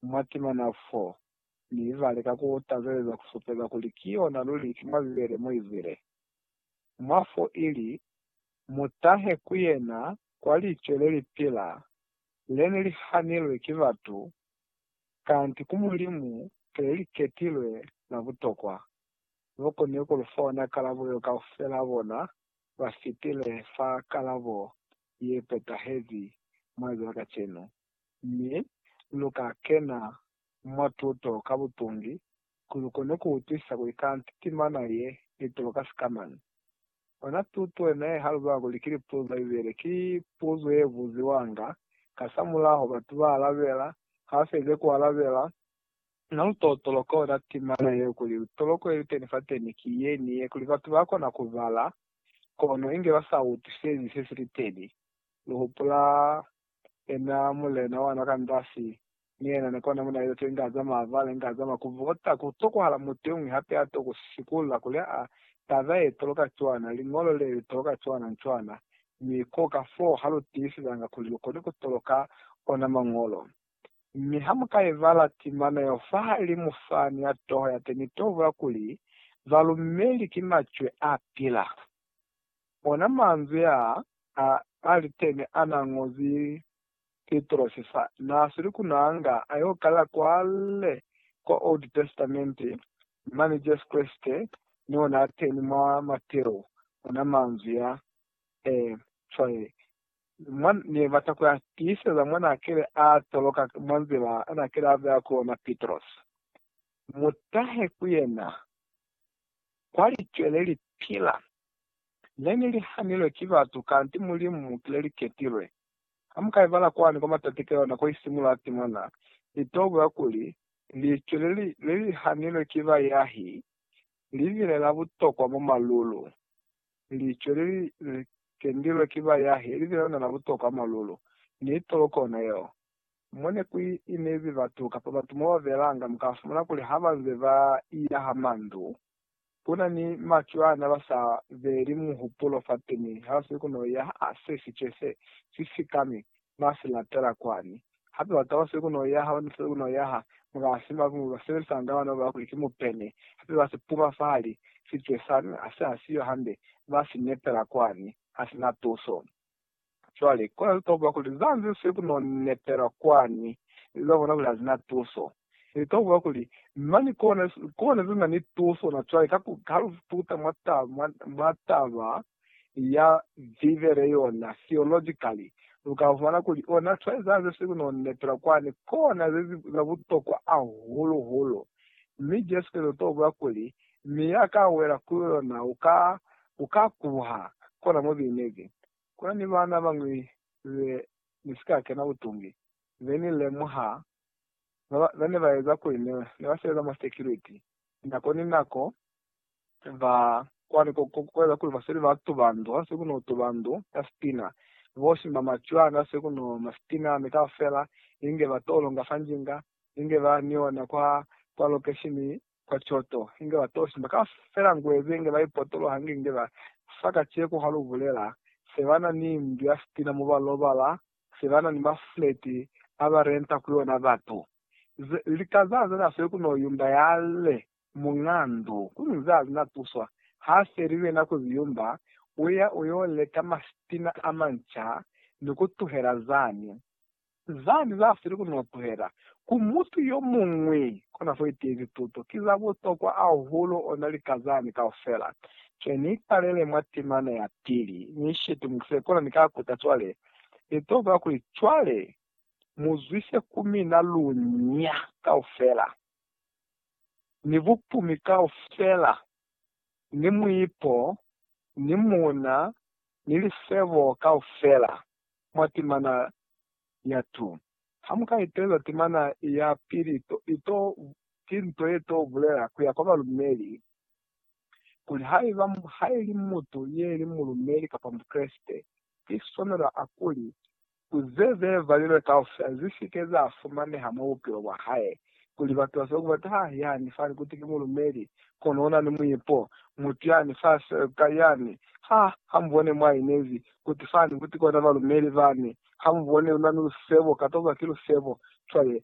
mwa timana fo, mi ba lika ku tazeza ku supeza kuli ki yona luli ki mwa Bibele mo izile, Mwa fo ili, Mu tahe ku yena kwa Licwe le li pila, le ne li hanilwe ki batu, kanti ku Mulimu ke le li ketilwe la butokwa. Bo koni ku lu fa ona kalabo yo kaufela bona ba fitile fa kalabo ye petahezi mwa za kacenu. Mi luka kena mwa tuto ka butungi ku lukone ku utwisisa kuli kanti timana ye itulo ka sikamañi. Ona tuto yena ye halubela kuli ki lipuzo za Bibele ki puzo ye buziwanga kasamulaho batu ba alabela, ha ba felize ku alabela. Na lu tolotoloka ona timana yeo kuli toloko ye liteni fateni ki ye ni ye, kuli batu ba kona ku bala kono inge ba sa utwisezi se si liteni. Lu hupula Yena Mulena wana ka ndasi, ni yena ni kona muna izo teli nga za mavale, nga za makuvota. Ku tokohala mutu yomuñwi hape ya toko sikula kuli, Aa, taba ye toloka cwana, liñolo le li toloka cwana ni cwana. Mi ko ka foo ha lu tiisizanga kuli lu koni ku toloka ona Mañolo. Mi ha mu ka i bala timana yeo fahalimu fa, ni ya toho ya te, ni to bula kuli, Balumeli ki macwe a pila. Ona manzwi aa a Aritemi anaa ñozi Pitrosi fa naa sili ku nanga a yo kala kwale kwa Old Testament, mane Jesu Kreste ni ona a teni mwa Mateo. Ona manzwi a e cwae mwa ne bata ku a tiiseza mwa na kile a toloka mwa nzila a na kile a beya ku yona Pitrosi. Mu tahe ku yena kwa licwele li pila. Ne ni li hanilwe ki batu, kanti Mulimu mu kile li ketilwe. Ha mu ka ibala kwani kwa matati ka yona ko i simula timona, li to buya kuli, Licwele li, le li hanilwe ki bayahi, li bile la butokwa mwa malulu. Licwele li, le kendilwe ki bayahi, li bile lona la butokwa mwa malulu. Ni toloko yona yeo. Mo ne ku inezi batu kapa batu mo ba belanga, mu ka fumana kuli ha ba nze ba ila ha mandu, ku na ni macwana ba sa beli muhupulo fateni ha ba sili ku no ya ha se si ce se si sikami ba si latela kwani. Hape batu ha ba sili ku no ya ha ba sili ku no ya ha mukasi ba ku ba sebelisañanga bana ba bona kuli ki mupene, hape ba si puma fahali si cwe sani ha se ha siyo hande, ba si nepela kwani ha si na tuso. Cwale, kona litokwa kuli za nze sili ku no nepela kwani, ili za bona kuli ha zina tuso. Litokwa kuli, mani kona, kona ze na ni tuso na cwale, ka ku, ha lu tuta mwa taba, mwa, mwa taba ya Bibele yona, theologically, lu ka fumana kuli, ona, cwale za nze sili ku no nepela kwani, kona ze, za butokwa hahulu-hulu. Mi Jesu Kreste litokwa kuli mi ya ka wela ku yona u ka, u ka kuha. Kona mo bineki ku na ni bana bañwi be ni si ka kena butungi, be ni lemuha, ba ba, ba ne ba eza kuli ne, ne ba sebeza mwa security, nako ni nako, ba kwani ko, ko, ko eza kuli ba sweli ba tuba ndu, ha se ku no tuba ndu ya sitina, bo simba macwani, ha se ku no nwa sitina, mi kaufela, inge ba to longa fa njinga, inge ba ni ona kwa, kwa lokeshini kwa coto, inge ba to simba kaufela ngwebe, inge ba ipotoloha, inge, inge ba fa kaceko ha lu bulela, se ba na ni ndu ya sitina mo ba lobala, se ba na ni mafuleti a ba renta ku yona batu. Ze, lika za ze na sweli ku no yumba ya le muñ'a ndu, kono za ze na tuswa, ha se li wena ku ziyumba, u ya u yo leka masitina a manca, ni ku tuhela zani. Zani za sili ku no tuhela ku mutu yo muñwi kona fo itiezi tuto ki za butokwa ahulu ona lika zani kaufela. Ke ni italele mwa timana ya pili, ni shitumukise kona ni ka kuta cwale. Ni to bula kuli, Cwale, mu zwise ku mina lunya kaufela, ni bupumi kaufela, ni muipo, ni muna, ni lifebo kaufela. mwa timana ya tu. Ha mu ka itelela timana ya pili, to, to, ki nto ye to bulela ku ya kwa balumeli, kuli haiba, ha ili mutu ye li mulumeli kapa Mukreste, ki swanelo a kuli, ku ze ze valilwe kaufela zi si ke za fumaneha mwa bupilo bwa hae, kuli batu ba soko bata hae yani fani kuti ki mulumeli, kono una ni muipo. Mutu yani fa seka yani, ha, ha mubone mwa inezi, kuti fani kuti kona balumeli bani, ha mubone una ni lusebo, katoba ki lusebo. Cwale,